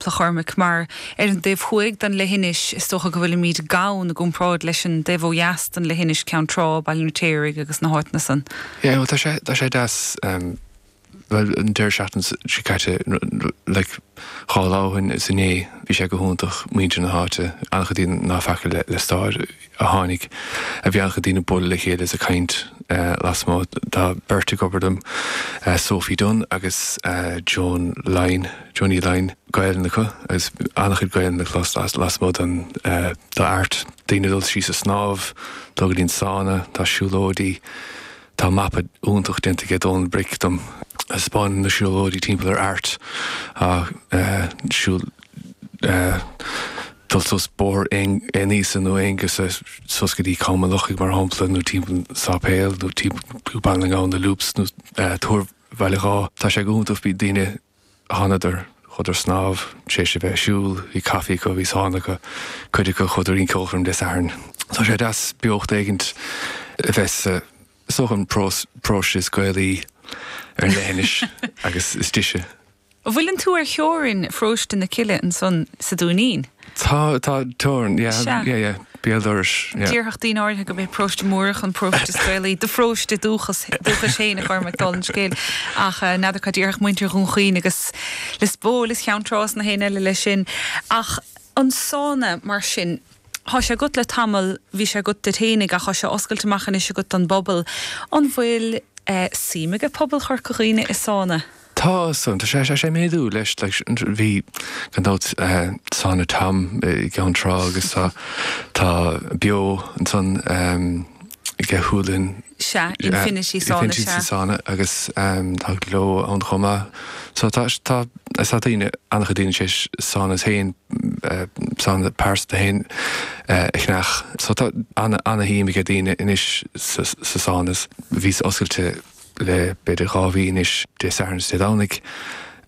Bhuel a Chormaic mar ar an dtaobh thuaidh den leithinis, is dócha go bhfuilimid gann i gcomparáid leis an dtaobh ó dheas den leithinis, Ceann Trá, Baile an Fheirtéaraigh agus na háiteanna san. Yeah well tá sé tá sé deas ehm bhuel an deireadh seachtain seo caite like dhá lá ó shin is inné bhí sé go hiontach muintir na háite an-chuid daoine ná feaca le le stáir. a tháinig, bhí an-chuid daoine ag bualadh le chéile is ag caint lasmuigh. Tá beirt ag obair dom, Sophie Dunne agus Joan Lyne, Joanie Lyne. Gaolainn acu agus an-chuid Gaolainne le clos lasmuigh de Airt. Daoine ag dul síos ag snámh, dul go dtí an sána, tá siúlóidí. Tá mapa iontach déanta aige Dónal Bric dom. Thaispeánann na siúlóidí timpeall ar Airt. dul suas Bóthar Aonghasa nó Bóthar Aonghusa suas go dtí Com an Lochaigh mar shampla, nó timpeall an tSáipéil nó timpeall Baile na nGall, na Loops nó Túr Bhaile Dháith. Tá sé go hiontach, bhí daoine, thánadar, chuadar ag snámh, tar éis a bheith ag siúl, bhí caifí acu, bhí sána acu, cuid acu chuadar ar an cheolchoirm Dé Sathairn. Tá sé deas beocht éigin a bheith anso sa pharóiste is Gaelaí ar an leithinis agus is deise. An bhfuileann tú ar theorainn Pharóiste na Cille ansan sa Dúinín? Tá, tá, teorainn, yeah, Sea. yeah, yeah, béal dorais, yeah. Déarfadh daoine áirithe gurb é Paróiste Múrach an paróiste is Gaelaí, do pharóiste dúchas, dúchais fhéin, a Chormaic, dála an scéil, ach n'fheadar cad déarfadh muintir Dhún Chaoin agus Lios Póil is Cheann Trá is gach éinne eile leis sin. Ach an sauna, mar sin, thá sé agat le tamall, bhí sé agat duit fhéinig ach thá sé oscailte amach anois agat don bpobal, an bhfuil eh, suim aige pobal Chorca Dhuibhne i sauna? Tá san, tá sé, tá sé ag méadú leis, leis, bhí, gan dabht, Sána Tom i gCeann Trá agus tá, tá Beo ansan aige Shúil Linn, Sea, Infinity Sána, sea. Infinity Sána agus tá Gleo ann chomh maith so tá, tá, tá daoine, an-chuid daoine tar éis sánas féin, sána pearsanta féin a cheannach so tá ana, ana-shuim aige daoine anois sa, sa sánas, bhíos oscailte. Le b'fhéidir dhá mhí anois, Dé Sathairn is Dé Domhnaigh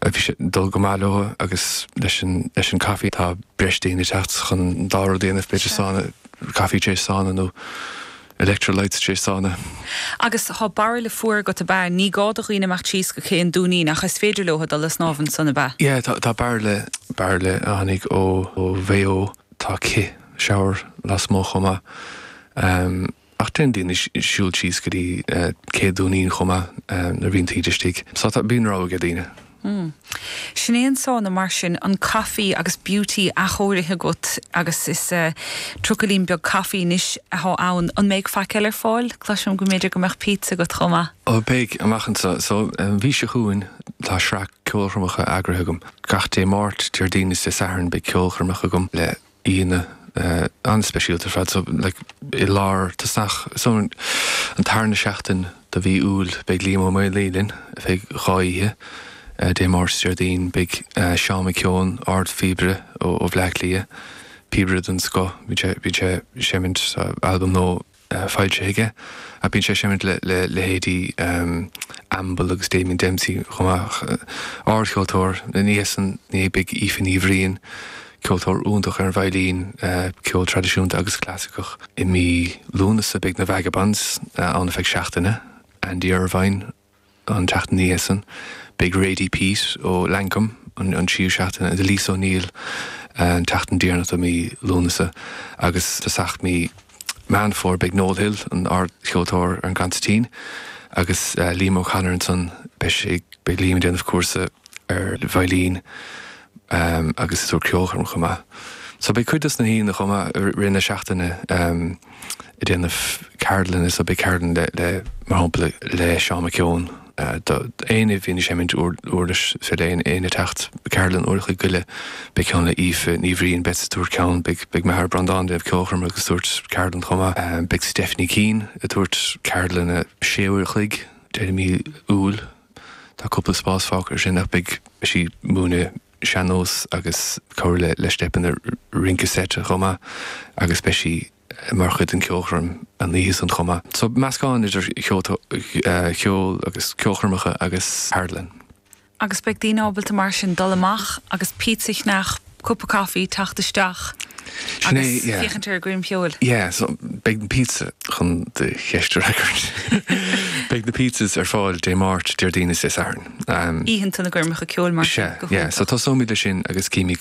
a bhí sé ag dul go maith leo agus leis an, leis an caife, tá breis daoine ag teacht chun an dá rud a dhéanamh, b'fhéidir Sure. sána, caife tar éis sána nó electrolytes tar éis sána. Agus tá bairille fuar agat ab ea? Ní gá do dhaoine imeacht síos go cé an Dúinín ach is féidir leo dul le snámh ansan, ab ea? Yeah, tá, tá bairille, bairille a tháinig ó Mhaigh Eo, tá cith, shower, lasmuigh chomh maith. Ach déanann daoine siúl síos go dtí Cé Dúinín chomh maith nuair a bhíonn taoide istigh. So tá, bíonn rogha ag daoine. Umm. Sin é an sána mar sin, an caife agus Beauty athchóirithe agat agus is eh, trucailín beag caife anois athá ann. An mbeidh faic eile ar fáil? Cloisim go mb'fhéidir go mbeadh pizza agat chomh maith? Oh beidh, amach anseo. So, an mhí seo chugainn tá sraith ceolchoirmeacha eagraithe agam. Gach Dé Máirt, Déardaoin is Dé Sathairn beidh ceolchoirmeacha agam le. aíonna an-speisialta ar fad. So, like, i lár, tosach, so an tarna seachtain de mhí Iúil beidh Liam Ó Maonlaí linn, ar feadh dhá oíche, Dé Máirt is Déardaoin, beidh Seán McKeon, ardphíobaire ó Bhleá Cliath, píobaire den scoth, bíonn sé, bíonn sé ag seimint albam nua, foilsithe aige. Bíonn sé ag seimint le leithéidí Amble agus Damien Dempsey chomh maith. Ard-cheoltóir, ina dhiaidh san, ina dhiaidh beidh Aoife Ní Bhriain, ceoltóir iontach ar an veidhlín, ceol traidisiúnta agus clasaiceach. I mí Lúnasa beidh na Vagabonds ann ar feadh seachtaine, Andy Irvine, An tseachtain ina dhiaidh san, beidh Radie Peat ó Lankum an tríú seachtain, agus Lisa O'Neill an tseachtain deireanach de mhí Lúnasa, agus tosach mí Meán Fómhair beidh Noel Hill, an ardcheoltóir, ar an gconsairtín, agus Liam O'Connor. Ansan beidh Liam ag déanamh cúrsa ar veidhlín agus ag tabhairt ceolchoirm chomh maith. So beidh cuid dos na haíonna chomh maith i rith na seachtaine. ag déanamh ceardlanna so beidh ceardlann le, le, mar shampla le Seán McKeon, do, éinne a bhíonn ag seimint uir, uirlis, is féidir le aon, éinne a' teacht, ceardlann uair a' chloig go leith, beidh ceann le Aoife Ní Bhriain, beidh, a tabhairt ceann, beidh, beidh m'athair Breandán ag déanamh ceolchoirme agus tabhairt ceardlann chomh maith, beidh Stephanie Keane a' tabhairt ceardlanna sé uair a' chloig deireadh mí Iúil, tá cúpla spás fágtha ar sin ach beidh sí múineadh sean-nós agus cabhair le, le steipeanna rince seit chomh maith agus beidh sí. mar chuid den cheolchoirm an oíche san chomh maith. So meascán idir cheol agus ceolchoirmeacha agus ceardlann. Agus beidh daoine ábalta mar sin dul amach agus pizza a cheannach, cupa caife, teacht isteach agus féachaint ar an gcoirm cheoil. Yeah, so beidh na pizza, chun do cheist a fhreagairt, beidh na pizzas ar fáil Dé Máirt, Déardaoin is Dé Sathairn. Oícheanta na gcoirmeacha ceoil mar sin go hiontach. Yeah, so tosóimid leis sin agus címid go.